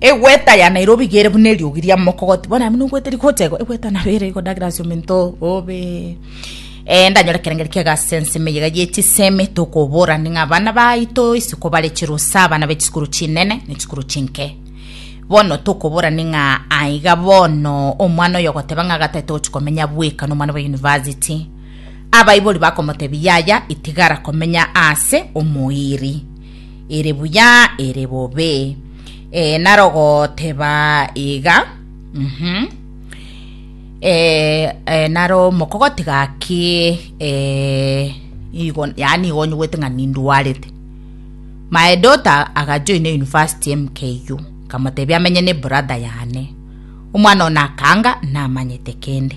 Egweta ya Nairobi iga ere buna eriogi ria mokogoti. Bono abwo nogwete rigocha igo, egweta nabo ere igo ndagera ase omento oo, obe. Eh, ndanyora ekerengeri kiaga ase ensemo eyega ye chisemi, tokobora ning'a abana baito isiko bare chirusa, abana be chisukuru chinene ne chisukuru chinke. Bono tokobora ning'a aiga bono omwana oyo ogoteba ng'a gatae togochi komenya bweka na omwana bwa university, abaibori bakomotebia yaya itigara komenya ase omoiri. ere buya ere bobe eh, narogoteba iga mm -hmm. eh, eh, naro mokogoti gaki eh, igo yani igo nyugwete ng'a nindwarete my daughter agajoine university mku nkamotebia amenye ne brother yane omwana ona akanga namanyete kende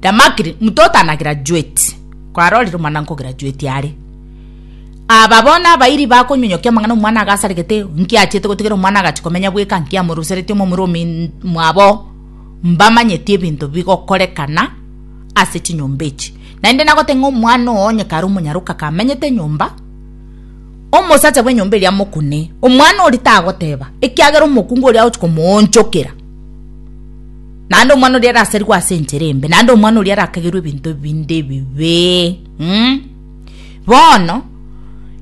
Damakiri, mtoto ana graduate, kwarorire omwana nko graduate are. Aba bono abairi bakonyonyokia amang'ana omwana agasaregete, nki achiete gotigera omwana agachi komenya bweka, nki amorusereti omomura omin mwabo. Mbamanyeti ebinto bigokorekana ase chinyomba echi. Naende nagote ng'a omwana oo onye kare omonyaroka kamenyete enyomba, omosacha bw'enyomba eria amokune, omwana oria tagoteba, ekiagera omokungu oria agochi komoonchokera. Naende omwana oria araserigwe ase enchera embe, naende omwana oria arakagerwe ebinto binde ebibe. Mm? Bono,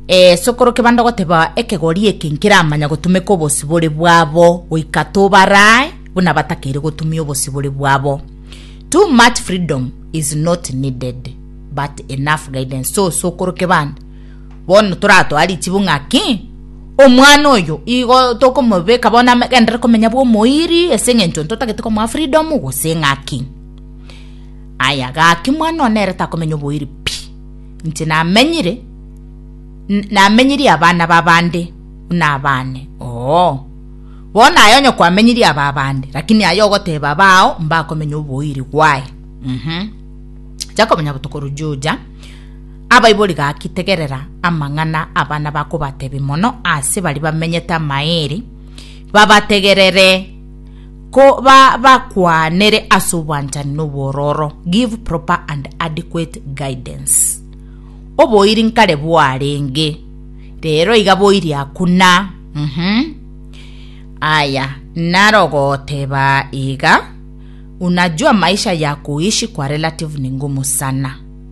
eh, sokoro kebanda ogoteba ekegori eke nkeramanya gotumeka obosibore bwabo goika tobarae buna batakeire gotumia obosibore bwabo. Too much freedom is not needed, but enough guidance. So, sokoro kebanda, Bono toratoa richibu ng'a ki? Omwana oyo igo tokomobeka bono agenderere komenya bw'omoiri ase eng'encho ntotagete komoa freedom gose ng'aki? Aya gaki mwana one ere takomenya oboiri pi. Inche namenyire namenyirie abana b'abande buna abane oo. Bono aye onye kwamenyirie aba abande lakini aye ogoteba abao mbakomenya oboiri why? Mh. Jacob Nyabuto korwa Juja. Abaibori gaki tegerera amang'ana abana bakobatebia mono ase baria bamenyete amaeri, babategerere ko ba bakwanere ase obwanchani na obwororo, give proper and adequate guidance. Oboiri nkare bwarenge, rero iga boiri aku na, mhm. Aya, naro ogoteba iga, unajua maisha ya kuishi kwa relative ni ngumu sana.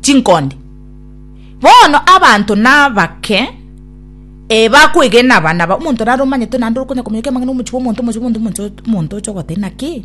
chinkonde. Bono abanto nabake eh bakwegena aba naba omonto naromanyete naende okonya kominyokia amang'ana omochie bw'omonto omochie bw'omonto omochie bw'omonto oche ogoteba ng'a ki.